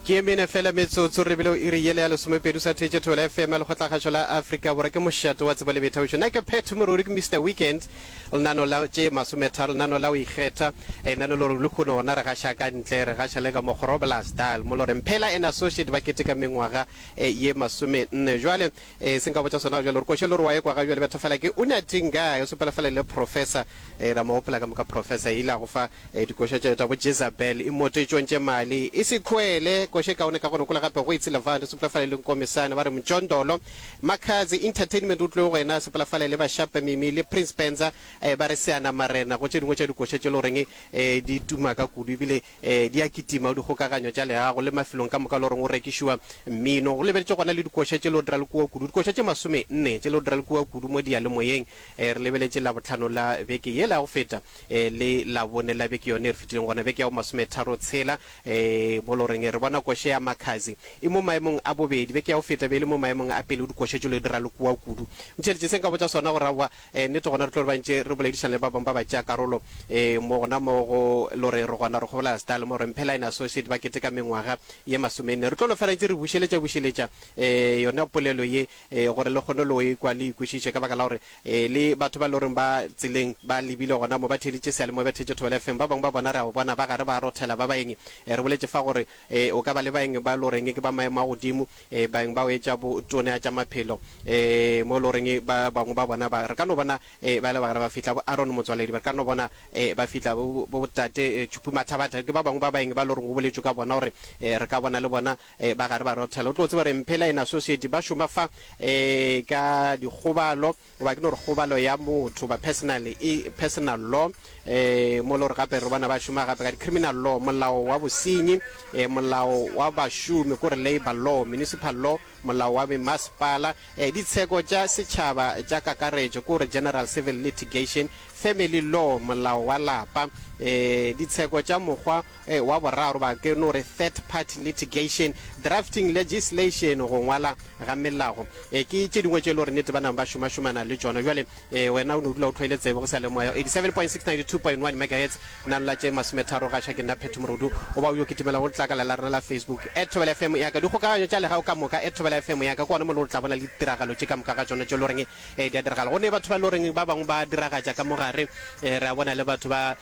ke e mene fela metsotso re bile o iri yele ya lesomepedi sa theetše thola fm lekgotlakgašo la afrika borwa ke mošato wa tsebo le boithabišo nna ke pet moruri ke mr weekend lenano la tše masometharo lenano la o ikgetha e nano le gore le kgone gona re gaša ka ntle re gaša le ka mokgorobla style mo loreng phela and associate ba keteka mengwaga e, ye masomenne jwale Ee, se nka botša sona ga bjale, gore koša le gore wa ekwa ga bjale, betha fela ke Unating Guy, o sepela fela le Professor, ee, ra mo gopola ka moka Professor, ile a go fa ee, dikoša tša tša bo Jezabel, imote tšong tše mali, e se khoele, koša e kaone ka gona kula gape go itse Levant, o sepela fela le Nkomisane, ba re Mjondolo, Makhadzi Entertainment o tloge go yena, sepela fela le ba Shape Mimi le Prince Penza, ee, ba re Seanamarena, go tše dingwe tša dikoša tše le goreng ee, di tuma ka kudu, ebile Ee, di a kitima go dikgokaganyo tša leago le mafelong ka moka, le goreng go rekišiwa mmino. Go lebetšwe gona le dikoša tše leo di ra le kua kudu, dikoša tše masome nne tše leo di ra le kua kudu mo diyalemoyeng. Ee, re lebeletše Labohlano la beke yela ya go feta ee, le Labone la beke yone e re fetileng, gona beke ya bo masome tharo tshela ee, mo le goreng re bona koše ya Makhadzi e mo maemong a bobedi. Beke ya go feta be e le mo maemong a pele go dikoša tše leo di ra le kua kudu. Ntheeletše se nka botša sona, gore aowa, Ee, nnete, gona re tlo re ba ntše re boledišana le ba bangwe ba batšeakarolo ee, mo gona mo go lo re re gona re kgobolela Style mo re Mphela and Associate ba keteka mengwaga ye masomenne. Re tlo lo fela ntše re bušeletša-bušeletša ee, yona polelo ye ee, gore le kgone lo e kwa le e kwešiše ka baka la gore ee, le batho ba e le goreng ba tseleng ba lebile gona mo ba theeditše seyalemoya, ba theeditše Thobela FM, ba bangwe ba bona re a ba bona ba gare ba rothela ba baeng ee, re boletše fa gore ee, o ka ba le baeng ba e le goreng ke ba maemo a godimo. e, baeng ba hwetša bo tonea tša maphelo, e, mo e le goreng ba bangwe ba bona ba, re ka no bona e, ba le bagare ba fihla bo Aaron Motswaledi, ba re ka no bona e, ba fihla bo, bo, bo Tate e, Tshupu Mathabatha, ke ba bangwe ba baeng ba le goreng go boletšwe ka bona gore e, re ka bona le bona e, ba gare ba rothela. O tlo tseba gore Mphela and Associate ba šoma fa e, ka Dikgobalo. Goba ke no re kgobalo ya motho, goba personally, e, personal law, e, mo lo re gape re bona ba šoma gape ka di-criminal law, molao wa bosenyi, e, molao wa bašomi, ko re labour law, municipal law, molao wa memasepala, e, ditsheko tša setšhaba tša kakaretšo, ko re general civil litigation, family law, molao wa lapa, e, ditsheko tša mokgwa e wa boraro ba ke no re third party litigation, drafting legislation go ngwala ga melago e ke tše dingwe tše e le gore nete ba nang ba šomašomana le tšona jwale e wena o no dula o tlhoile tsebe go sa le moya 87.692.1 megahertz na nla tše masometharo gaša ke nna phetho morodu o ba o yo kitimela go letlakala la rena la facebook at thobela fm ya ka dikgokaganyo tša legago ka moka at thobela fm ya ka kwane mo le go tla bona le ditiragalo tše ka moka ga tšona tše loreng e di a diragala go ne batho ba loreng ba bangwe ba diragatša ka mogare e re a bona le batho ba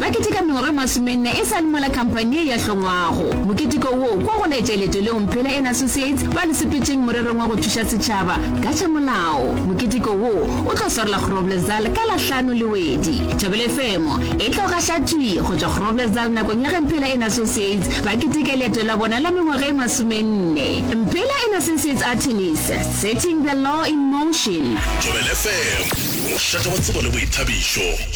Ba keteka mengwaga e masomenne e sa le mola khamphani ye ya hlongwago. Moketeko wo kwa go laetša leeto leo Mphela and Associates ba le sepetšeng morerong wa go thuša setšhaba ka tša molao. Moketeko wo o tlo swarela Groblersdal ka la hlano le wedi. Thobela FM e tlo gaša thwi go tšwa Groblersdal nakong ya ge Mphela and Associates ba keteka leeto la bona la mengwaga e masomenne. Mphela and Associates Attorneys, Setting the Law in Motion. Thobela FM, mošate wa tsebo le boithabišo.